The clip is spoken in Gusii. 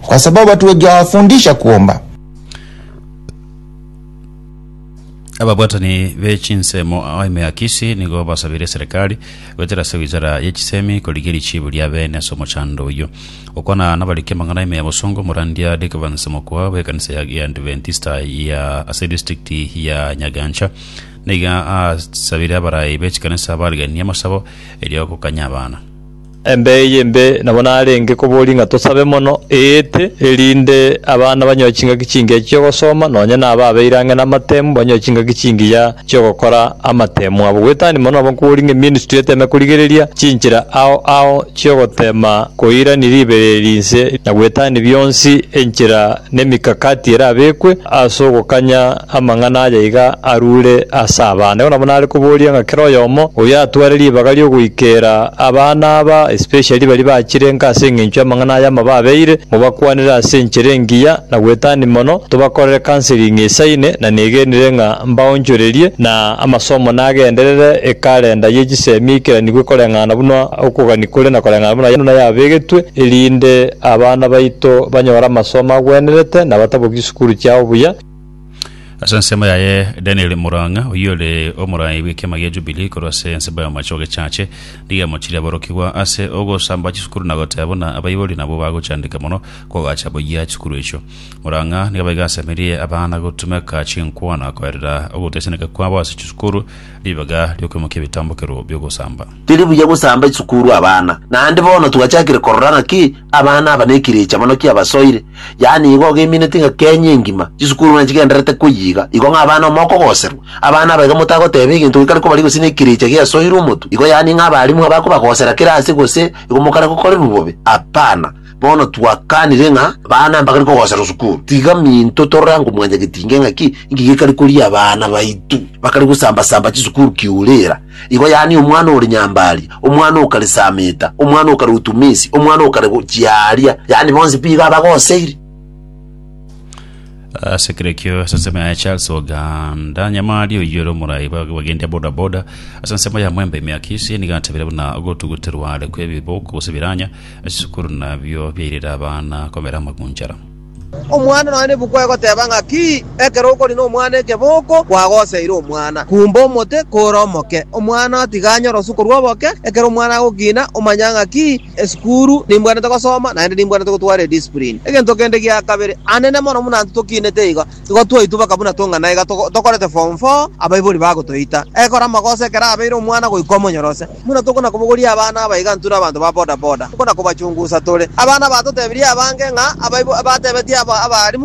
kwa sababu hatujaafundisha kuomba. Ababwatani be chinsemo ao ime ya Kisii nigo basabire eserekari goetera ase wizara ye chisemi korigia richiibo ria beene ase omochando oyio. Gokwana nabariki amang'ana ime ya bosongo, Morandia Dick Evans Mokua bw'ekanisa ya Giadventista ya ase distrikti ya Nyagancha nigo asabire abarai be chikanisa bariganie amasabo erio gokanya abana. Embe eye embe nabo narenge koboria ng'a tosabe mono, eete, erinde abana banyoe chingaki chingiya chi'ogosoma, nonya na aba abeire ang'e namatemu banyoe chingaki chingiya chi'ogokora amatemu abo. Goetania mono nabo nkoboria ng'a eministry eteme korigereria chinchera ao ao chi'ogotema koirania ribereri inse na goetania bionsi enchera Nemikakati erabekwe as'ogokanya amang'ana aya iga arure as'abana. Igo nabo nare koboria ng'a kera oyomo oyo atware ribaga riogoikera abana aba, especially baria bachire nka as'engencho y'amang'ana aya amababeire, mobakwanere as'enchera engiya na gwetania mono, tobakorere counseling esaine, na negenire ng'a mbaonchorerie na amasomo nagenderere ekalenda ye chisemi eikeranigwe koreng'ana buna okogania kore na koreng'ana buna yabegitwe erinde Abana baito banyore amasomo agwenerete na batabokie chisukuru chiao buya. Ase ensemo yaye, Daniel Murang'a, oyio ore omorai bw'ekiama gia Jubilee korwa ase ensemo y'amache ogechache, nigo amochirie aborokigwa ase ogosamba chisukuru na goteba buna abaibori nabwo bagochandeka mono kogacha buya chisukuru echio. Murang'a nigo abaiga asemerie abana gotumeka chinkwana koerera ogoteseneka kwabo ase chisukuru, Ribaga ri'okoimokia ebitambokero bi'ogosamba. Teri buya gosamba esukuru abana, naende bono twachakire korora ng'aki abana aba nekirecha mono ki'abasoire, yaani igo ogemineti ng'a Kenya engima chisukuru buna chigendererete koyiga, igo ng'a abana amo okogoserwa. Abana aba iga motagoteba egento gekare kobaria gose nekirecha giasoirwe omotu, igo yaani ng'a abalimu abakobagosera kera ase gose igo mokare gokorerwa bobe? Hapana. Bono twakanire ng'a abana mbakare kogoserwa sukuru, tiga minto torore ango mwancha getinge ng'aki inki gekare koria abana baito. Bakare gosamba-samba chisukuru kiureera. Igo yaani omwana ore nyambaaria, omwana okare sameeta, omwana okare utumiisi, omwana okare go- chiaaria, yaani bonsi pi iga abagoseire. Ase ekero ekio ase ensemo yaye Charles Oganda Nyamari oyio ere omorai bwa- bw'abagendia boda boda ase ensemo ya Mwembe Emiakisi nigo atabire buna ogotuguterwa are kw'ebiboko gose ebiranya Esukuru nabio biairire abana komera amagunchara. Omwana nonya nebuku egoteba ng'aki, Ekero okori nomwana ekeboko, kwagoseire omwana. Kumba omote kore omoke. Omwana tiga anyore osukuru oboke. Ekero omwana agokina, omanya ng'aki, Esukuru nimbwanete gosoma, naende nimbwanete gotwara ediscipline. Egento kende gia kabere, anene mono buna intwe tokinete igo, igo twaitwa baka buna tong'ana iga tokorete form four, abaibori bagotoita. Ekore amagoso ekero abeire omwana goika omonyorose. Buna tokonakomogoria abana abaigantu na abanto ba bodaboda, tokona-kobachungusa tore. Abana batotebirie abange ng'a abaibo batebetie abaalimu.